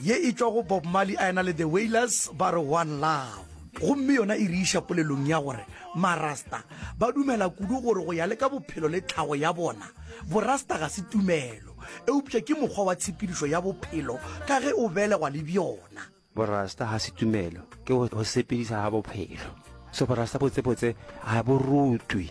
Ye e tšwa go Bob Marley a ena le The Wailers ba re One Love. Gomme yona e re iša polelong ya gore Marasta ba dumela kudu gore go ya le ka bophelo le tlhago ya bona, Borasta ga se tumelo, eupša ke mokgwa wa tshepedišo ya bophelo ka ge o belegwa le bjona. Borasta ga se tumelo, ke go sepediša ga bophelo. So Borasta botsebotse ga bo rutwe.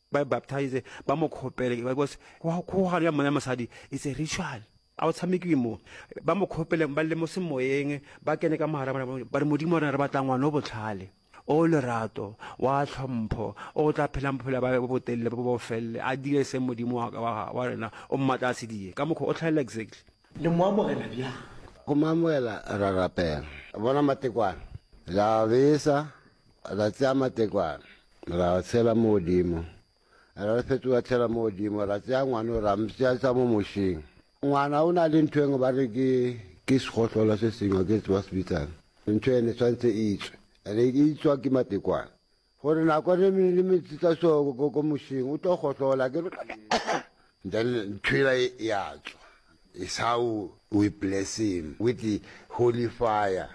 ba baptize ba mo khopele because kgogano ya monna le mosadi it's a ritual a o tshamekiwe mo ba mo khopele ba le mo semoyeng ba kene ka mogara ba re modimo rena re batla ngwana o botlhale o lerato wa tlhompho o tla phelang bophelo ba botelele bo bo felele a dire se modimo wa rena o mmatla a se die ka mokgwa o tlhalela exactly le mo amogela bjang go mo amogela ra rapela bona matekwane la besa Ra tsea matekwane, ra a tshela mo godimo, ra re fetola tshela mo godimo, ra tsea ngwano ra mpšeatša mo mošeng. Ngwana o na le ntho engwe ba re ke, ke segohlolo se sengwe, ga ke tsebe ba se bitsang. Ntho ene e tshwanetse e tswe, ene e tswa ke matekwane. Gore nako re mo le metsitsa so ko, ko mošeng, o tlo gohlola, ke re, then ntho ela e, e a tswa. It's how we bless him with the holy fire.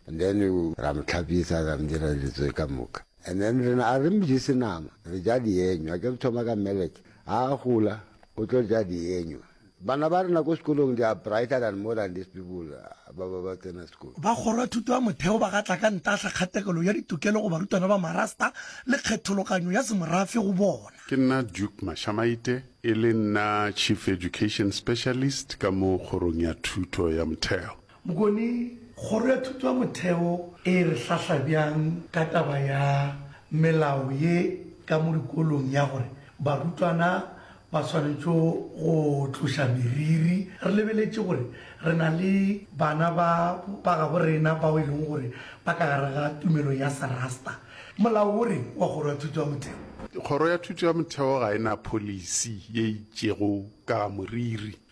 And then ra mo tlhapisa, ra mo dira dilo tsoe ka moka. And then rena a re mo jese nama, re ja dienywa. A ke re thoma ka melek, ha a gola o tlo ja dienywa. Bana ba rena ko sekolong they are brighter than more than these people ba ba ba tsena sekolo. Ba kgoro ya thuto ya motheo ba gatla ka ntahla kgatekelo ya ditokelo go barutwana ba Marasta le kgethologanyo ya semorafe go bona. Ke nna Duke Mashamaite, e le nna Chief Education Specialist ka mo kgorong ya thuto ya motheo. Bokone, Kgoro ya Thuto ya Motheo e re hlahla bjang ka taba ya melao ye ka mo dikolong ya gore barutwana ba swanetše go tloša meriri? Re lebeletše gore re na le bana ba ba gabo rena bao e lego gore ba ka gare ga tumelo ya Serasta. Molao o reng wa Kgoro ya Thuto ya Motheo? Kgoro ya Thuto ya Motheo ga e na pholisi ye itšego ka ga moriri.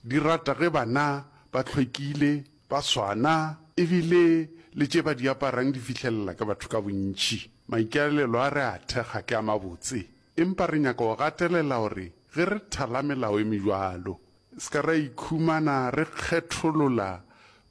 Di rata ge bana ba hlwekile, ba swana e bile le tše ba di aparang di fihlelela ke batho ka bontši. Maikaelelo a re a thekga ke a mabotse, empa re nyaka go gatelela gore ge re thala melao e mebjalo, se ka ra ikhumana re kgetholola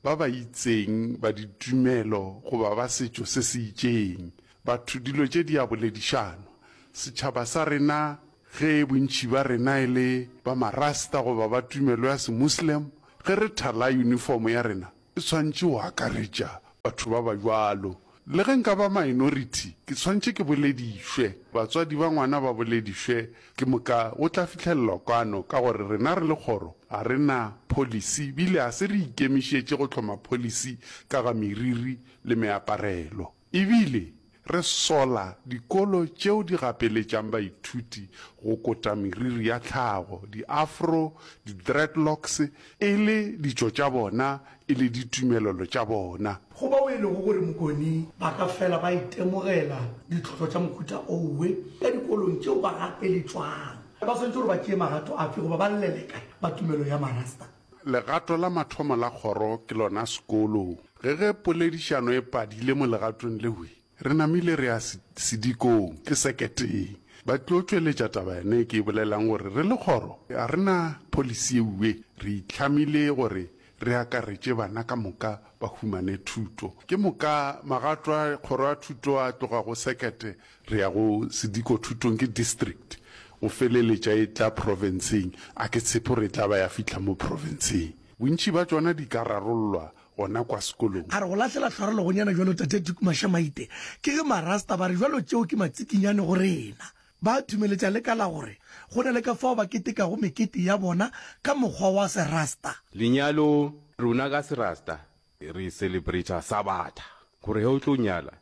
ba ba itseng ba ditumelo goba ba setšo se se itšeng. Batho dilo tše di a boledišanwa. Setšhaba sa rena Ge bontši ba rena e le ba Marasta goba ba tumelo ya Semuslim, ge re thala yunifomo ya rena e tshwanetše go akaretša batho ba ba bjalo. Le ge nka ba minority, ke tshwanetše ke boledišwe, batswadi ba ngwana ba boledišwe, ke moka go tla fihlelelwa kwano ka gore rena re le kgoro ga re na policy bile ga se re ikemišetše go hloma policy ka ga meriri le meaparelo. E bile re sola dikolo tšeo di gapeletšang baithuti go kota meriri ya tlhago, di-afro, di-dreadlocks, e le ditšo tša bona e le ditumelelo tša bona. Go bao e lego gore mokone ba ka fela ba itemogela ditlhohlo tša mohuta owe ka dikolong tšeo ba gapeletšwang, ba swanetše gore ba tšee magato afe goba ba llele kae ba tumelo ya Marasta? Legato la mathomo la kgoro ke lona sekolo. Ge ge poledišano e padile mo legatong leo, re namile re ya sedikong, ke seketeng. Ba tlo tšweletša taba yona e ke e bolelang gore re le kgoro ga re na pholisi eue re itlhamile gore re akaretše bana ka moka ba humane thuto. Ke moka magato a kgoro a thuto a tloga go sekete Re ya go sediko thutong ke district go feleletša e tla profenseng, a ke tshepe gore e tla ba ya fihla mo profenseng. Bontši bja tšona di ka rarollwa gona kwa sekolong. A re go lahlela tlhwarelo gonyana bjalo Tate Duke Mashamaite, ke ge Marasta ba re bjalo tšeo ke matsikinyane go rena. Ba thumeletša le ka la gore go na le ka fao ba ketekago mekete ya bona ka mokgwa wa Serasta. Lenyalo, Rona ka Serasta re celebrata Sabatha gore ge o tlo nyala